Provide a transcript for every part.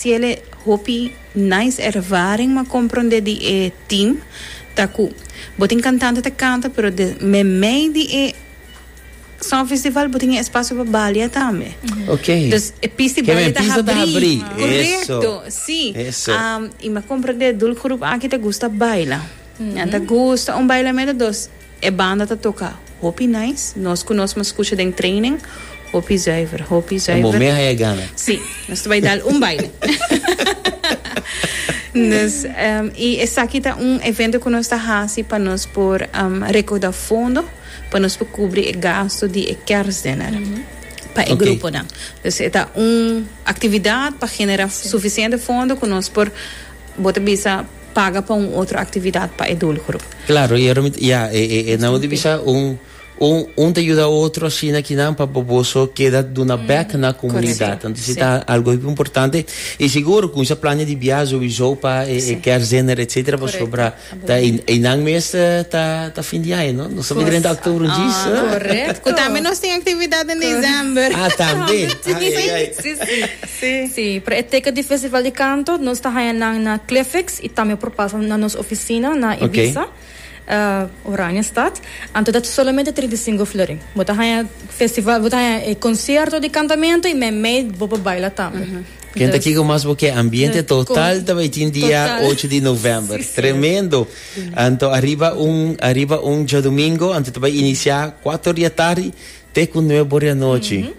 Ciele hopi nice ervaring ma compronde di e team ta cu bo tin cantante ta canta pero de memey di e Song Festival bo tin e espacio pa balia tambe. Ok. Dus e pista di balia ta habri. Correcto. Si. Y me compronde dul groep aki ta gusta baila. Nan ta gusta un bailamento dos. E banda ta toka hopi nice. Nos ku nos maskucha den training, hopi zuiver, hopi zuiver. E momé haya gana. Sí, nos ta bai dal un baile. Dus, i esaki ta un evento ku nos ta hasi pa nos por rekauda fondo pa nos por kubri e gasto di e kèrsdiner pa e gruponan. Dus e ta un aktividat pa genera sufisiente fondo ku nos por, bo ta bisa, paga pa un otro actividad pa e doelgroep. Claro, y arom ya, e nan di bisa un un un ta yuda otro ashina ki nan pa boso keda duna back na comunidad. Anto si ta algo hopi importante y seguro cu misa plania di biaha sowiso pa e kertzener etcetera pasobra ta eynan mes ta ta fin di aña, no? Nos ta bideren ta october un djis. Correcto. Cu tambe nos tin actividad den december. Ah, tambe. Ay, ay, ay. Sí, pero e teken di Festival di Kanto nos ta haña nan na Cliffix i tambe por pasa na nos ofisina na Ibiza, Oranjestad. Anto ta solamente trinta i sinku florin. Bo ta haña festival, bo ta haña e konsierto di kantamentu i mei bo por baila tambe. Ken ta kiko mas bo ke ambiente total ta bai tin dia ocho di novèmber. Tremendo! Anto ariba un ariba un djadumingu, anto ta bai inisiá kuater di atardi te ku nueber di anochi.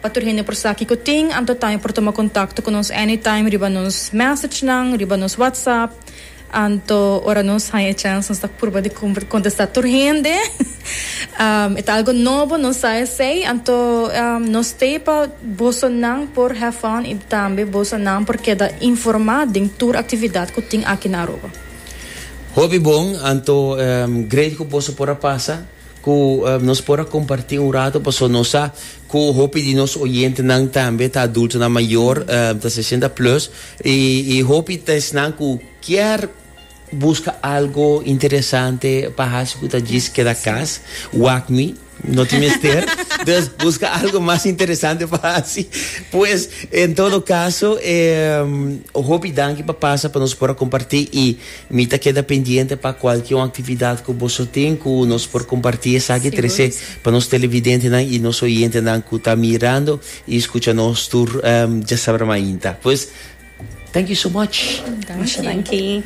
Pa tur hende por sa kiko tin, anto taño por tuma kontakto ku nos anytime riba nos mèsechnan, riba nos whatsapp. Anto ora nos haña e chèns nos ta purba di kontestá tur hende. E ta algu nobo, nos sa esei. Anto nos t'e pa bosonan por have fun i tambe bosonan por keda informá den tur aktividat ku tin aki na Aruba. Hopi bon, anto great ku boso por a pasa ku nos por a kompartí un ratu pasobra nos sa Cu hopi di nos oyentenan tambe ta adultonan mayor, ta sesenta plus, y y hopi ta esnan cu kier busca algo interesante pa haci cu ta djis keda cas, wak mi, no tin mester, dus busca algo mas interesante pa haci. Pues, en todo caso, hopi danki pa pasa pa nos por a comparti y Mi ta keda pendiente pa kualke un aktividat ku boso tin ku nos por kompartí esaki trese pa nos televidentenan i nos oyentenan ku ta mirando i skucha nos tur djasabra mainta. Pues, thank you so much! Masha danki!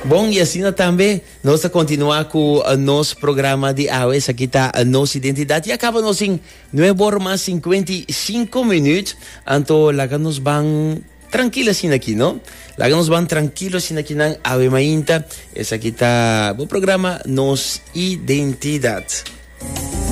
Bon, i asina tambe nos ta kontinuá ku nos programa di awe. Esaki ta Nos Identidat i a kaba nos den nueve ora mas sinkuenta i sinku minüt. Anto laga nos ban. Trankil asinaki no. Laga nos ban trankil asinaki nan awe mainta. Esaki ta bo programa Nos Identidad.